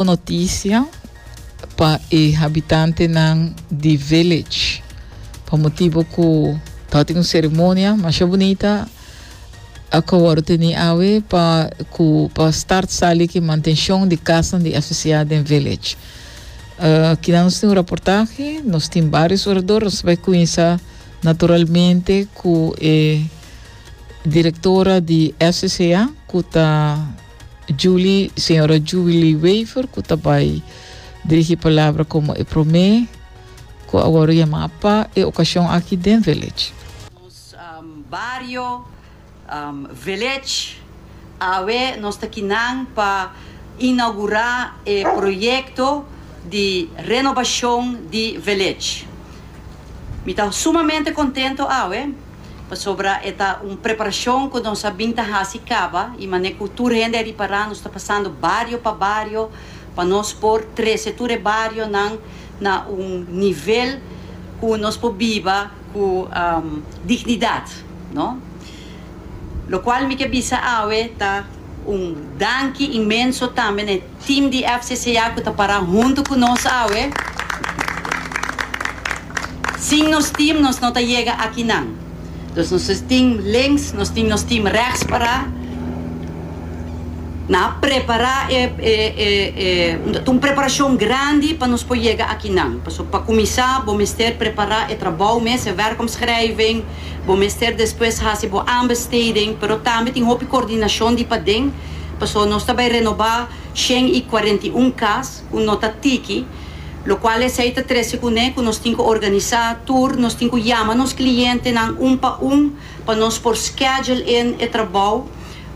Bon notisia pa e habitantenan di Village pa motibu ku tawata tin un seremonia masha bunita ku a wòrdu teni awe pa ku pa start sali ki mantenshon di kasanan di FCA den Village. Kina nos tin un raportahe, nos tin barios orador, nos ta bai kuinsa naturalmente ku e direktora di FCA ku ta. Julie, Señora Julie Wever cu ta bay dirigi palabra como e prome cu awor yama pa e ocasion aki den Village. Nos bario, Village, awe nos ta aki nan pa inaugura e proyecto di renobacion di Village. Mi ta sumamente contento awe. pasobra e ta un preparashon ku nos a bin ta hasi kaba i manera ku tur hende a ripará nos ta pasando bario pa bario pa nos por trese tur e barionan na un nivel ku nos por biba ku dignidat no lokual mi ke bisa awe ta un danki inmenso tambe na e. Team di FCCA cu ta para hunto cu nos awe. Sin nos team nos no ta yega akinan. Dus nos tin links, nos tin nos team rechts para. Nan a prepara e e ta un preparacion grandi pa nos por yega akinan. Pasobra pa cuminsa bo mester prepara e trabou mes, e werkomschrijving. Bo mester despues haci bo aanbesteding. Pero tambe tin hopi coordinacion di paden. Pasobra nos ta bai renobá shen i kuarenta i un kas ku no ta tiki, lokual esei ta trese kuné ku nos tin ku organisá tur, nos tin ku yama nos klientenan un pa un pa nos por schedule in e trabou.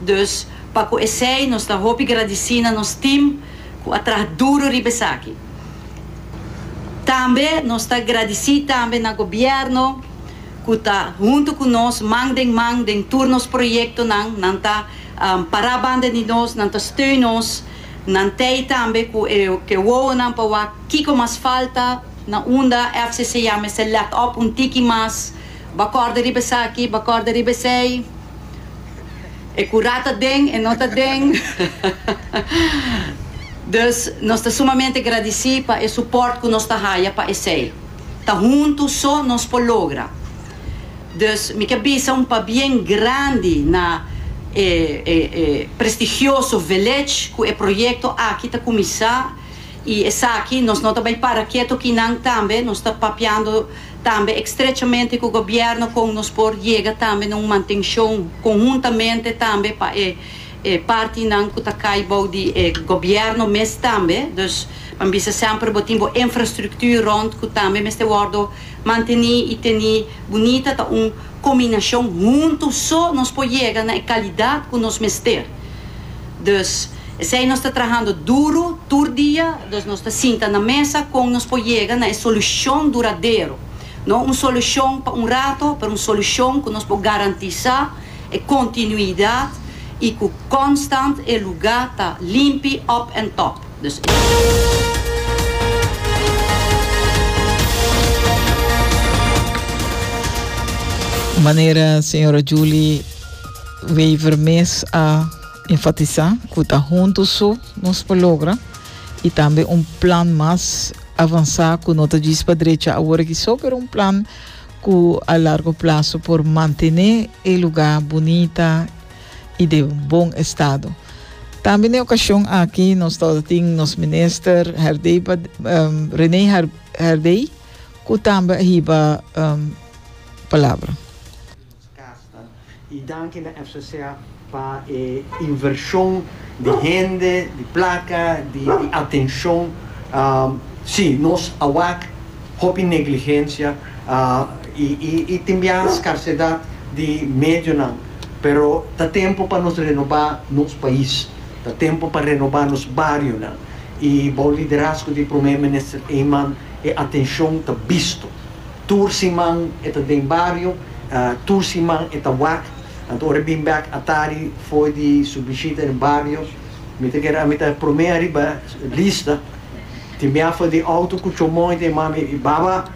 Dus pa ku esei nos ta hopi gradisí na nos tim ku a traha duru riba esaki. Tambe nos ta gradisí tambe na Gobièrnu ku ta huntu ku nos man den man den tur nos proyektonan, nan ta. Pará banda di nos, nan ta steun nos, nan tei tambe ku e ke wowonan pa wak kiko mas falta na unda FCCA mester let op un tiki mas, ba kòrda riba esaki, ba kòrda riba esei, e ku rat ta den, e no ta den. Dus nos ta sumamente gradisí pa e supòrt ku nos ta haya pa esei. Ta huntu so nos por logra. Dus mi ke bisa un pabien grandi na e e prestigioso Village ku e proyekto aki ta kuminsá i esaki nos no ta bai para keto kinan tambe nos ta papiando tambe ekstrechamente ku gobièrnu kon nos por yega tambe na un mantenshon konhuntamente tambe pa e e partinan ku ta kai bou di e gobièrnu mes tambe, dus pa mi bisa semper bo tin bo infrastruktuur rònt ku tambe mester wòrdu mantené i teni bunita, ta un kombinashon huntu so nos por yega na e kalidat ku nos mester. Dus esei nos ta trahando duru tur dia, dus nos ta sinta na mesa kon nos por yega na e solushon duradero, no un solushon pa un rato, pero un solushon ku nos por garantisá, E continuidad y cu constant e lugar ta limpi up and top. Dus e. Manera señora Julie Wever mes a enfatisa cu ta hunto so nos por logra y tambe un plan mas avansa cu no ta djis pa drecha aworakiso pero un plan cu a largo plazo por mantene e luga bunita y de bon estado. Tambe n'e ocasion aki nos ta tin nos minister Herdey, um, Rene Herdey, cu tambe a hiba um, palabra. Y danki na FCCA pa e inversion di hende, di placa, di atencion. Si, nos a wak hopi negligencia y tin bia scarcedad di medionan, pero ta tempo pa nos renoba nos pais, ta tempo pa renoba nos barionan y bou liderazgo di Prome Minister Eman e atencion ta bisto. Tur siman e ta den bario, tur siman e ta wak. Anto ora e bin bek atari for di su bishita den bario, mi ta keda mi ta prome ariba lista. Tin biaha di auto ku chomon i ta yama mi, Baba,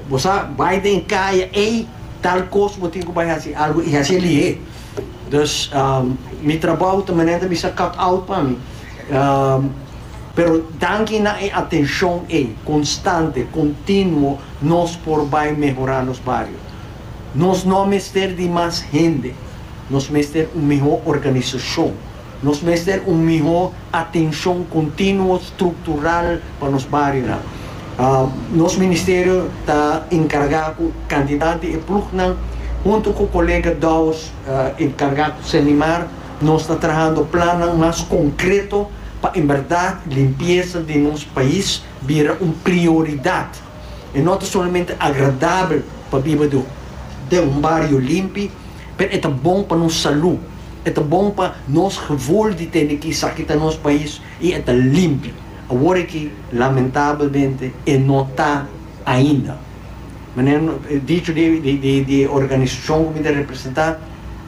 bo sa bai den e kaya ei, tal kos bo tin ku bai hasi algu i hasi e lihé. Dus mi trabou ta manera mi sa cut out pa mi. Pero danki na e atenshon ei konstante, kontinuo nos por bai mehorá nos bario. Nos no a mester di mas hende, nos mester un mihó organisashon. Nos mester un mihó atenshon kontinuo struktural pa nos barionan. Nos ministerio ta enkargá ku kantidat di e plugnan huntu ku kolega Douwes enkargá ku Senimar, Nos ta trahando plannan mas konkreto pa en berdad limpiesa den nos pais bira un prioridad. E no ta solamente agradabel pa biba den un bario limpi, pero e ta bon pa nos salú, e ta bon pa nos gevoel di tene ki esaki ta nos pais i e ta limpi. Awor aki, lamentabelmente, e no ta ainda. Manera dicho di e organisacion cu mi ta representa,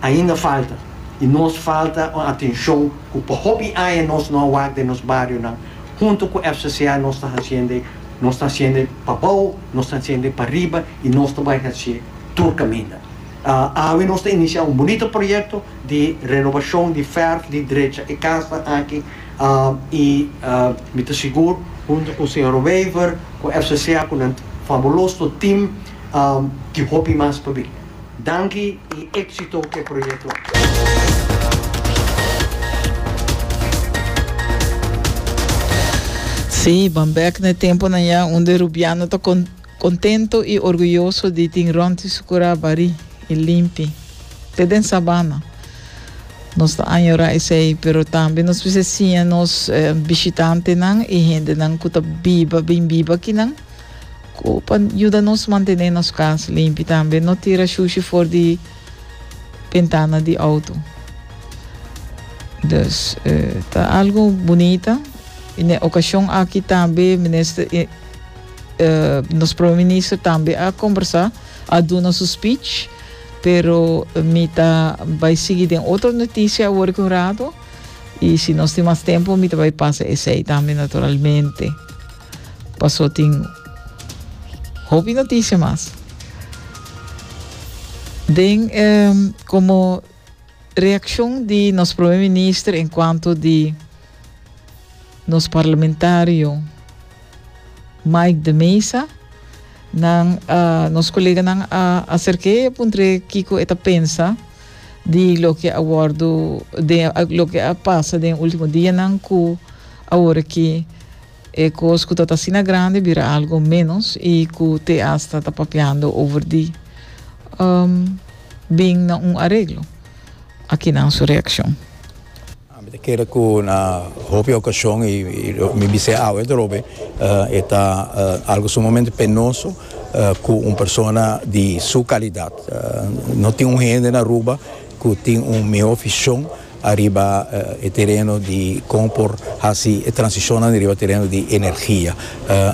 ainda falta y nos falta un atencion cu pa hopi aña nos no a wak den nos barionan. Hunto cu FCCA nos ta haciende, nos ta haciende pa bao, nos ta haciende pa riba y nos ta bay haci tur caminda. Awe nos ta inicia un bunito proyecto di renovacion di ferf di drecha e casnan aki y mi ta sigur hunto cu Sra. Wever, cu FCCA, cu nan fabuloso team y hopi mas pabi. Danki i exito cu e proyecto aki. Sí, ban bek na e temponan ya un di Rubiano ta contento y orguyoso di tin rònti su curá barí y limpi, te den sabana. Nos ta añorá esei, pero tambe nos bisa siña nos bishitantenan y hendenan cu ta biba, bin biba akinan, Cu pa yuda nos mantene nos cas limpi. Tambe no tira shushi for di bentana di auto. Dus eh, ta algo bunita. Y n'e ocasion aki tambe minister, eh, eh, nos prome minister tambe a conversa, a duna su speech. Pero mi ta bay sigui den otro noticia awor cu un rato. Y si nos tin mas tempo, mi ta bay pasa esey tambe naturalmente. Paso tin hopi noticia mas. Den como reaccion di nos primer minister en cuanto di nos parlamentario Mike de Mesa, nan a nos coleganan a acerke e puntre kico e ta pensa di loke a wordo den loke a pasa den ultimo dianan cu awor aki E kos ku ta ta asina grandi bira algo ménos i ku te asta ta papiando over di bin na un areglo. Aki nan su reakshon. Mi ta kere ku na hopi okashon i mi bisa e awe drobe e ta algo sumamente penoso ku un persona di su kalidat. No tin un hende na Aruba. cu tin un mihó vision ariba e tereno di con por haci e transicionnan riba tereno di energia,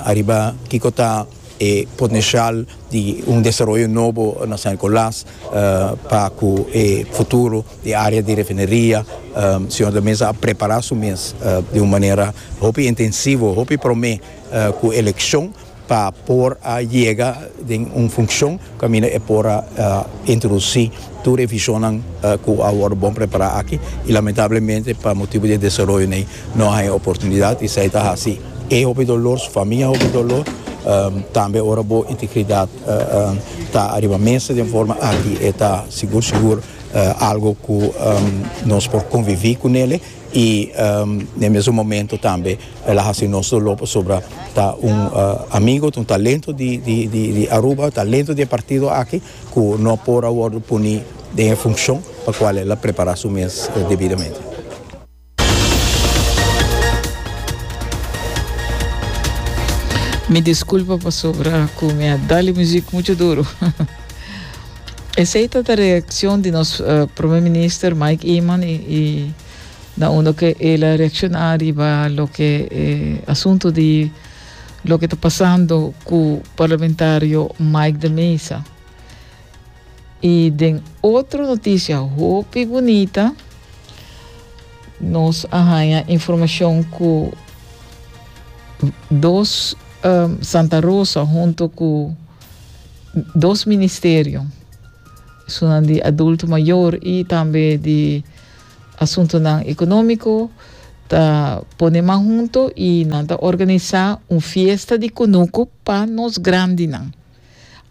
ariba kico ta e potencial di un desaroyo nobo na San Nicolas pa cu e futuro di e area di refineria señor de Meza a prepara su mes di un manera hopi intensivo, hopi prome cu eleccion. pa por a yega den un funcion caminda e por a introduci tur revisionnan cu a wordo bon prepara aki y lamentablemente pa motibo di e desaroyonan ey no a haya oportunidad esey ta haci e hopi dolor su famia hopi dolor tambe ora bo integridad ta ariba mesa den forma aki e ta sigur sigur algo cu nos por convivi cu nele. y n'e mesun momento tambe el a haci nos dolo pasobra ta un amigo ta un talento di Aruba talento di e partido aki cu no por a wordo poni den e funcion pa cual el a prepara su mes debidamente. Mi disculpa pasobra cu mi a dale music mucho duro. Esey ta ta reaccion di nos Prome Minister Mike Eman y na unda ke el a reacciona riba loke e asunto di loke ta pasando cu Parlamentario Mike de Meza. Y den otro noticia hopi bunita nos a haya informacion cu dos Santa Rosa hunto cu. dos ministerio, esunnan di adulto mayor y tambe di asuntonan economico, ta pone man hunto y nan ta organisa un fiesta di cunucu pa nos grandinan.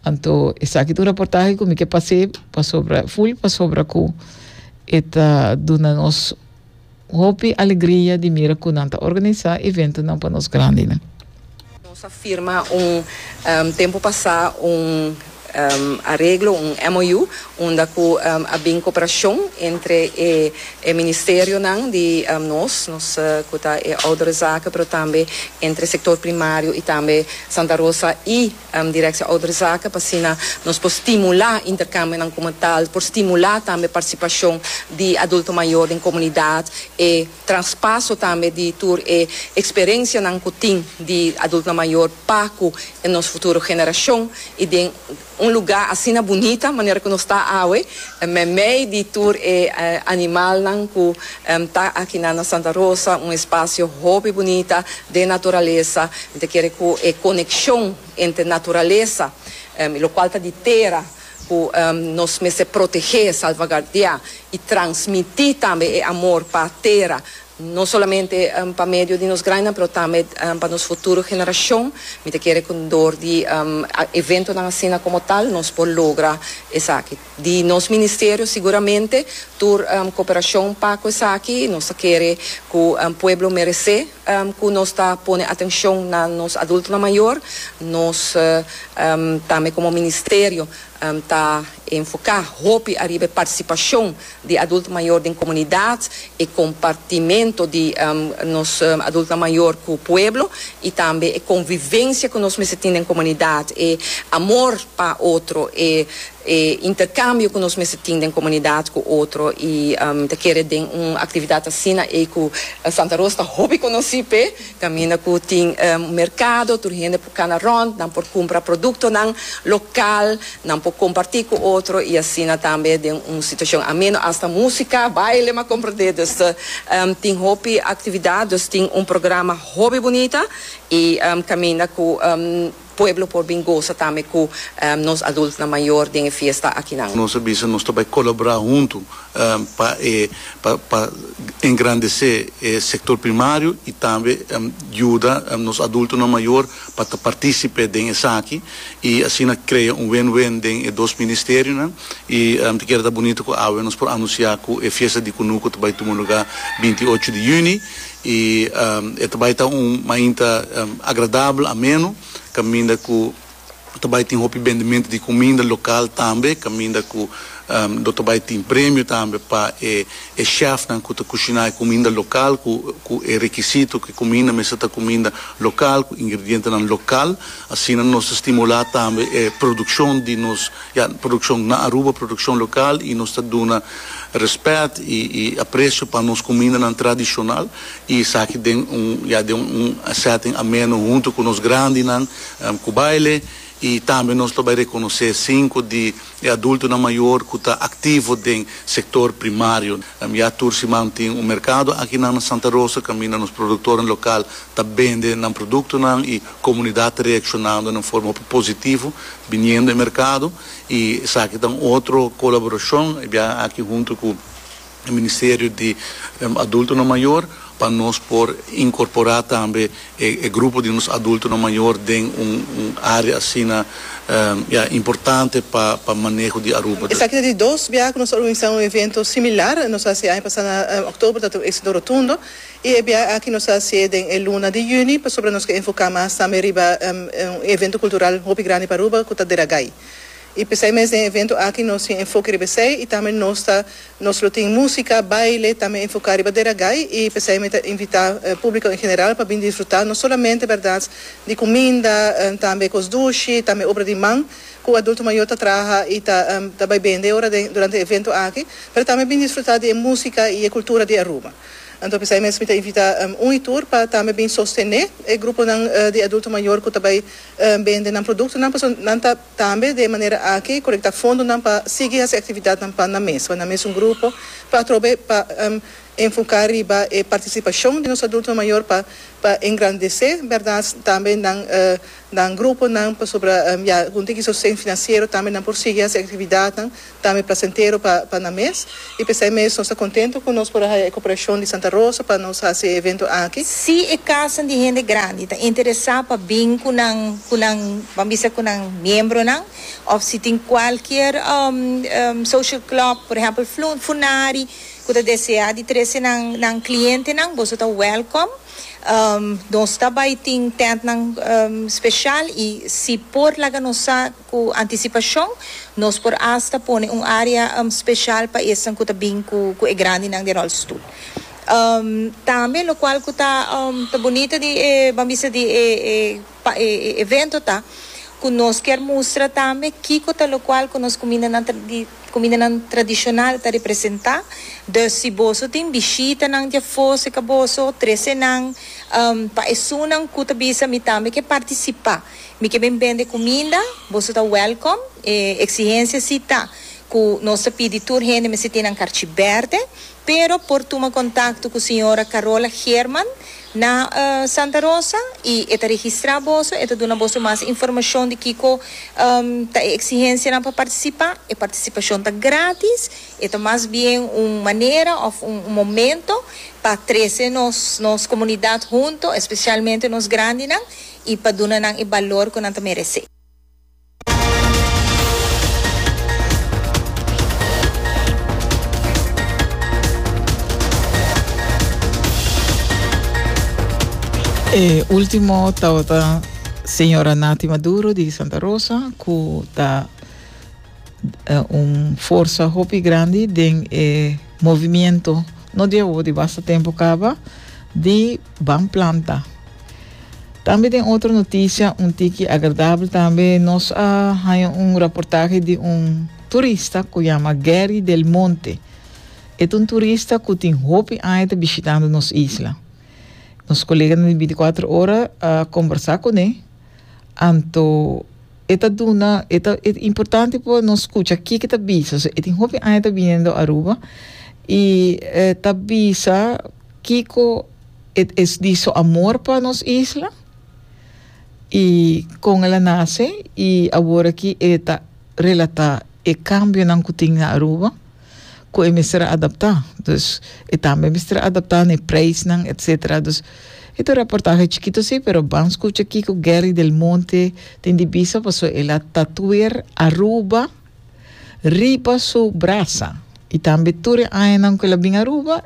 Anto esaki ta un reportaje cu mi ke pasé pasobra, full pasobra cu e ta duna nos hopi alegria di mira cu nan ta organisa eventonan pa nos grandinan. Nos a firma un tempo pasa un areglo, un MOU, unda cu a bin cooperacion entre e ministerionan di nos, nos cu ta e Ouderenzaken, pero tambe entre sector primario y tambe Santa Rosa y. Directie Ouderzaken, pa asina nos por stimula intercambionan como tal, por stimula tambe participacion di adulto mayor den comunidad, e traspaso tambe di tur e experencianan cu tin di adultonan mayor pa cu nos futuro generacion, y den un lugar asina bunita manera cu nos ta awe, meimei di tur e animalnan cu ta aki na Santa Rosa, un espacio hopi bunita, den naturalesa, mi ta kere ku e konekshon entre naturalesa i lokual ta di tera ku nos mester protegé, salvagardiá i transmití tambe e amor pa tera, no solamente pa medio di nos grañanan pero tambe pa nos futuro generashon, mi ta kere ku dor di eventonan asina komo tal nos por logra esaki. Di nos ministerio siguramente tur cooperacion pa cu esaki. Nos ta kere cu pueblo merece cu nos ta pone atencion na nos adultonan mayor. Nos tambe como ministerio ta enfoca hopi ariba e participacion di adulto mayor den comunidad, e compartimento di nos adultonan mayor cu pueblo y tambe e convivencia cu nos mester tin den comunidad, e amor pa otro, e. E interkambio ku nos mester tin den komunidat ku otro i mi ta kere den un aktividat asina ei ku Santa Ros ta hopi konosí p'e kaminda ku tin un merkado tur hende por kana rònt, nan por kumpra produktonan lokal, nan por kompartí ku otro i asina tambe den un situashon ameno asta músika, baile, m'a komprendé. Dus tin hopi aktividat, dus tin un programa hopi bunita i kaminda ku. Pueblo por bin gosa tambe cu nos adultnan mayor den e fiesta akinan. Nos a bisa nos ta bay colabora hunto pa e pa engrandece e sector primario y tambe yuda nos adultonan mayor pa ta participe den esaki y asina crea un win-win den e dos ministerionan y ta keda ta bunito cu awe nos por anuncia cu e fiesta di Cunuco ta bay tuma lugar binti ocho di juni. i e ta bai ta un mainta agradabel, ameno, kaminda ku ta bai tin hopi bendimento di kuminda lokal tambe, kaminda ku lo ta bai tin premio tambe pa e e shèfnan ku ta kushiná e kuminda lokal ku ku e rekisito ku e kuminda mester ta kuminda lokal, ku ingredientenan lokal. Asina nos ta stimulá tambe e produkshon di nos. Ya, produccion na Aruba, produccion local y nos ta duna respet y y aprecio pa nos cumindanan tradicional y esaki den un ya den un un setting ameno hunto cu nos grandinan cu baile y tambe nos lo bay reconoce cinco di e adultonan mayor cu ta activo den sector primario. Ya tur siman tin un mercado akinan na Santa Rosa caminda nos productoren local ta bende nan productonan y Comunidad ta reaccionando na un forma hopi positivo biniendo e mercado y esaki ta un otro colaboracion e biaha aki hunto cu e Ministerio di Adultonan Mayor pa nos por incorpora tambe e grupo di nos adultonan mayor den un area asina ya importante pa pa maneho di Aruba. Esaki ta di dos biaha cu nos ta organiza un evento similar. Nos a hasi e aña pasa na October ta tin un exito rotundo. E biaha aki nos a hasié den e luna di yüni pasobra nos ke enfoká mas tambe riba un evento kultural hopi grandi pa Aruba ku ta Deragai. I p'esei mes den e evento aki nos tin enfoke riba esei i tambe nos ta nos lo tin músika, baile, tambe enfoká riba Deragai i p'esei mi ta invitá públiko en general pa bin disfrutá no solamente bèrdat di kuminda, tambe kos dushi, tambe obra di man ku adulto mayó ta traha i ta ta bai bende ora den durante e evento aki, pero tambe bin disfrutá di e músika i e kultura di Aruba. Anto p'esei mes mi ta invita un y tur pa tambe bin sostené e gruponan di adulto mayor cu ta bay bende nan productonan pasobra nan ta tambe den e manera aki colecta fondonan pa sigui haci actividadnan pa nan mes, pa nan mes un grupo pa atrobe pa enfoca riba e participacion di nos adulto mayor pa pa engrandece, berdad, tambe nan nan gruponan pasobra ya algun tin di sosten financiero tambe nan por sigui haci actividadnan. tambe plasentero pa pa nan mes y p'esei mes nos ta contento cu nos por a haya e cooperacion di Santa Rosa pa nos haci e evento aki. Si e casanan di hende grandi ta interesa pa bin cu nan cu nan ban bisa cu nan miembronan of si tin cualkier social club por ehempel Funari cu ta desea di trece nan nan clientenan boso ta welcome nos ta bay tin tentnan special y si por laga nos sa. Ku antisipashon nos por asta pone un área speshal pa esnan ku ta bin ku e grandinan den ròlstoel. Tambe lokual ku ta bunita di e, ban bisa di e evento ta ku nos kier mustra tambe kiko ta lokual ku nos kumindanan di kumindanan tradishonal ta representá. Dus si boso tin bishitanan di afó serka boso, trese nan pa esunnan ku ta bisa mi tambe ke partisipá. Mi ke bin bende kuminda, boso ta wèlkom. E eksihensia si ta ku nos ta pidi tur hende mester tin nan karchi bèrdè, pero por tuma kontakto ku señora Carola Geerman na Santa Rosa i e ta registrá boso, e ta duna boso mas informashon di kiko ta e eksihensianan pa partisipá. E partisipashon ta grátis, e ta mas bien un manera òf un momento pa trese nos nos komunidat huntu, espesialmente nos grandinan. i pa duna nan e balor ku nan ta meresé. E ultimo tabata señora Nati Maduro di Santa Rosa ku ta un forsa hopi grandi den e movimiento no di awo di basta tempo kaba di Ban planta. Tambe den otro noticia, un tiki agradabel tambe, nos a haya un raportahe di un turista cu yama Gary Del Monte. E ta un turista cu tin hopi aña ta bishitando nos isla. Nos coleganan di binticuatro ora a combersa cu ne, anto e ta duna, e ta e importante pa nos scucha kiko ta bisa. So, e tin hopi aña ta biniendo Aruba y ta bisa, Kiko e es di su amor pa nos isla y con el a nace y awor aki e ta relata e cambionan cu tin na Aruba cu e mester a adapta. Dus e tambe mester a adapta n'e prijsnan etc. Dus e ta un reportahe chikito si pero ban scucha kiko Gerry del Monte tin di bisa paso el a tatuer Aruba riba su brasa y tambe tur e añanan cu el a bin Aruba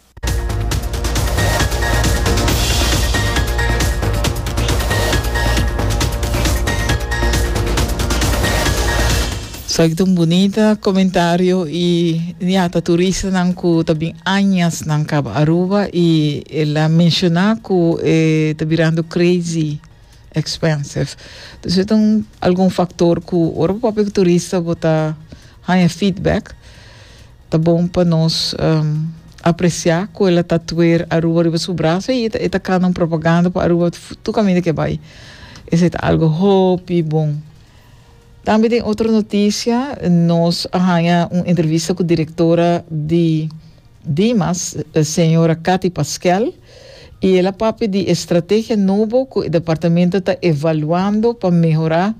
Esaki ta un bunita comentario y ya ta turistanan cu ta bin añas nan Cabo Aruba y el a menciona cu e ta birando crazy expensive. Dus e ta un algun factor cu ora bo papia cu turista bo ta haya feedback. Ta bon pa nos apreciá cu el a tatuer Aruba riba su brazo y e ta cana un propaganda pa Aruba tur caminda que bai. Esey ta algo hopi bon. Tambe den otro noticia nos a haña un entrevista cu directora di Dimas, señora Cathy Pasquel, y el a papia di e strategia nobo cu e departamento ta evaluando pa mehorá,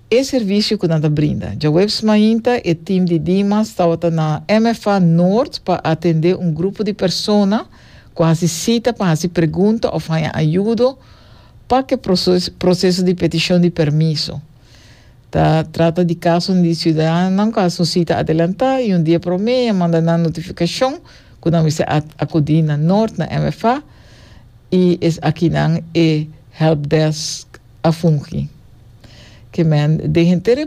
E servisio ku nan ta brinda. Djaweps mainta e tim di Dimas tabata na MFA Noord pa atendé un grupo di persona ku hasi sita pa hasi pregunta òf haña ayudo pa ke proseso di petishon di permiso. Ta trata di kasonan di siudadanonan ku hasi un sita adelantá i un dia promé a manda nan notifikashon ku nan mester akudí na Noord na MFA i es akinan e hèlpdèsk. a fungi. Ke men den henter e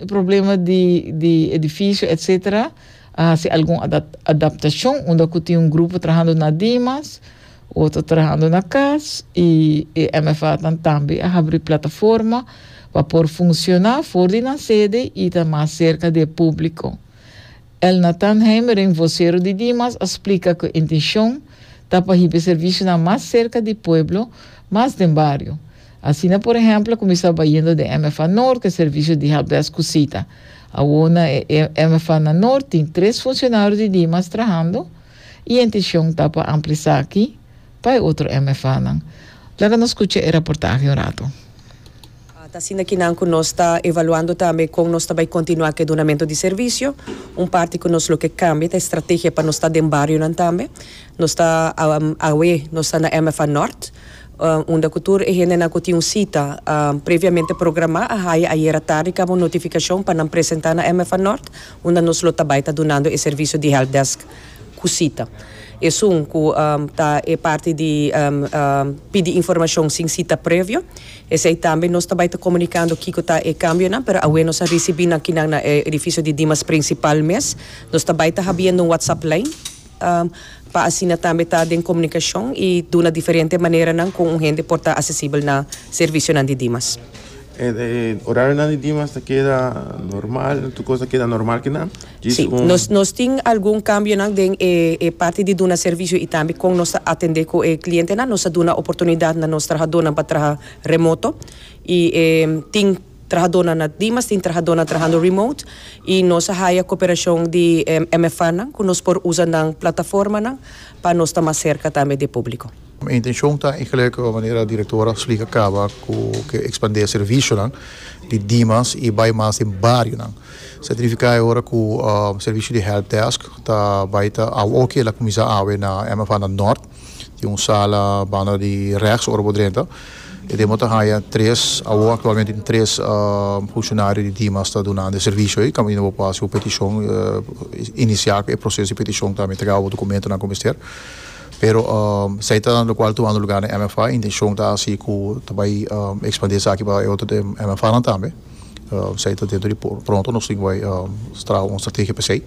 problema di di edifisio etsetera a hasi algun adaptashon unda ku tin un grupo trahando na Dimas, otro trahando na kas i e MFAnan tambe a habri plataforma pa por funsiona for di nan sede i ta mas serka di e publiko. Elnathan Heimering, vocero di Dimas, a splica cu e intencion ta pa hiba e servicionan mas cerca di pueblo, mas den bario. Asina por ehemplo cuminsa bayendo den MFA Noord e servicio di helpdesk cu cita. Awor na e MFA na Noord tin tres funcionario di Dimas trahando y e intencion ta pa ampliasaki. Pa e otro MFAnan, laga nos scucha e raportahe un rato. Ta asina ki nan cu nos ta evaluando tambe con nos ta bay continua cu e dunamento di servicio. Un parti cu nos lo ke cambia ta e strategia pa nos ta den barionan tambe. Nos ta awe nos ta na MFA Nort, unda cu tur e hendenan cu tin un cita previamente programa a haya ayera tardi caba un notificacion pa nan presenta na MFA Nort, unda nos lo ta bay ta dunando e servicio di helpdesk. ku sita. Esun ku ta e parti di pidi informashon sin sita previo. Esei tambe nos ta bai ta komunikando kiko ta e kambionan, pero awe nos a risibí nan kinan na e edifisio di Dimas prinsipal mes. Nos ta bai ta habiendo un whatsapp lijn pa asina tambe ta den komunikashon i duna diferente maneranan kon un hende por ta asesibel na servisionan di Dimas. E orarionan di Dimas ta keda normal? Tur kos ta keda normal kinan? Si, nos nos tin algun cambionan den e e parti di duna servicio y tambe con nos ta atende cu e clientenan. Nos a duna oportunidad na nos trahadornan pa traha remoto y e tin trahadornan na Dimas, tin trahadornan trahando remote y nos a haya cooperacion di e MFAnan cu nos por usa nan plataformanan pa nos ta mas cerca tambe di e publico. Mi intencion ta e gelukkige manera directora Sliger caba cu ke expande servicionan di dimas y bay mas den barionan. Sa significa e ora cu servicio di help desk ta bay ta awe oke el a cuminsa awe na MFA na Nort. Tin un sala banda di rechts ora bo drenta. E demo ta haya tres, awo actualmente tin tres funcionario di dimas ta duna nan e servicio ey. Caminda bo por haci un peticion, inicia cu e proceso di peticion tambe ta gaba bo documentonan cu mester. Pero esaki ta lo cual tumando lugar na MFA, e intencion ta haci cu ta bay expandi esaki pa e otro di MFAnan tambe, esaki ta dentro di pronto nos tin cu bay traha un estrategia pa esey.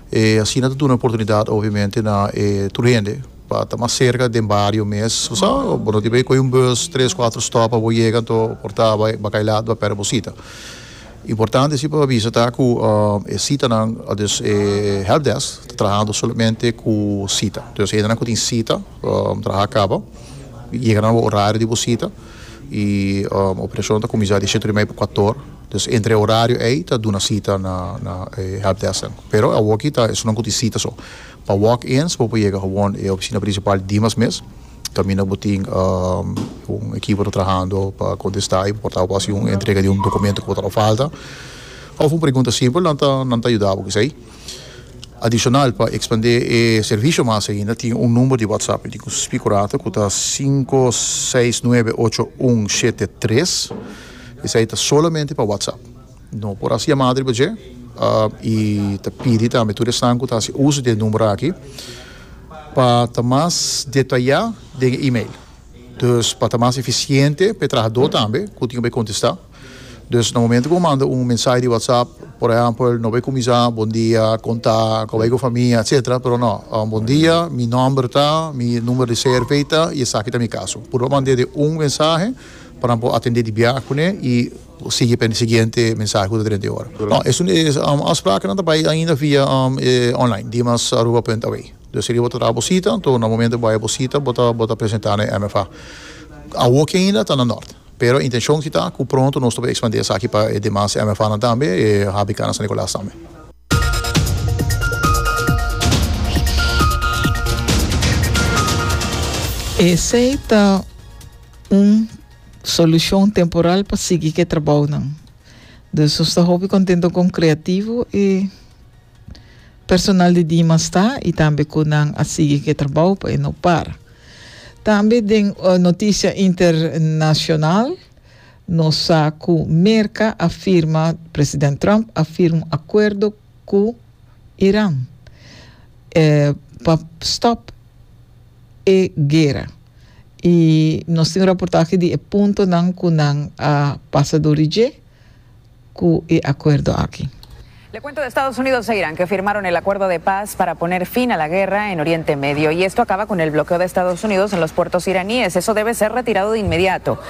E asina ta duna e oportunidad obviamente na e tur hende pa ta mas cerca den bario mes, bo sa, bo no tin bay coge un bus tres cuatro stop pa bo yega, anto por ta bay bakailat, bay perde bo cita. Importante si pa bisa ta cu e citanan, dus e helpdesk ta trahando solamente cu cita. Dus hendenan cu tin cita traha caba y yega na bo horario di bo cita y operacion ta cuminsa di siete hora y media pa cuatro hora. Dus entre e horario ey ta duna cita na e helpdesknan. Pero awoki ta esun nan cu tin cita so. Pa walk-ins bo por yega gewoon e oficina principal Dimas mes. Camina bo tin un ekipo ta trahando pa contesta y bo por ta haci un entrega di un documento cu bo ta haci falta of un pregunta simpel nan ta nan ta yuda bo cu esey. Adicional pa expande e servicio mas ainda tin un number di WhatsApp y tin cu spi cu rato cu ta sinku seis nuebe ocho un shete tres esey ta solamente pa WhatsApp. No por hasi yamada riba dje i ta pidi tambe tur esnan ku ta hasi uso di e number aki pa ta mas detayá den e email. Dus pa ta mas efisiente pa e trahadó tambe ku tin ku bai kontestá. Dus na momentu ku bo manda un mensahe di WhatsApp, por ehèmpel, no bai kuminsá bondia, kontá, kòbai ku famia, etcetera, pero no, bondia, mi nòmber ta, mi numero di CRV ta i esaki ta mi kaso. Puru pa mand'é den un mensahe pa nan por atend'é di biaha kuné i. Bo sigui pa e siguiente mensahe ku ta trenta e ora. No, esun e afsprakennan ta bai ainda via e online, dimasaruba punt awe. Dus si bo ta traha bo sita, anto na momento bo bai bo sita bo ta bo ta presentá na e MFA. Awoki ainda ta na nort, pero e intenshon si ta ku pronto nos ta por ekspandí esaki pa e demas MFAnan tambe, e HBK na San Nikolas tambe. Esei ta un. Solucion temporal pa sigui cu e trabounan. Dus nos ta hopi contento con creativo e personal di Dima sta y tambe cu nan a sigui cu e trabou pa e no para. Tambe den noticia internacional nos sa cu Merca a firma, President Trump a firma un acuerdo ku Iran pa stòp e guera i nos tin raportahe di e puntonan ku nan a pasa dor di dje ku e akuerdo aki. Le cuento de Estados Unidos e Irán que firmaron el acuerdo de paz para poner fin a la guerra en Oriente Medio y esto acaba con el bloqueo de Estados Unidos en los puertos iraníes. Eso debe ser retirado de inmediato.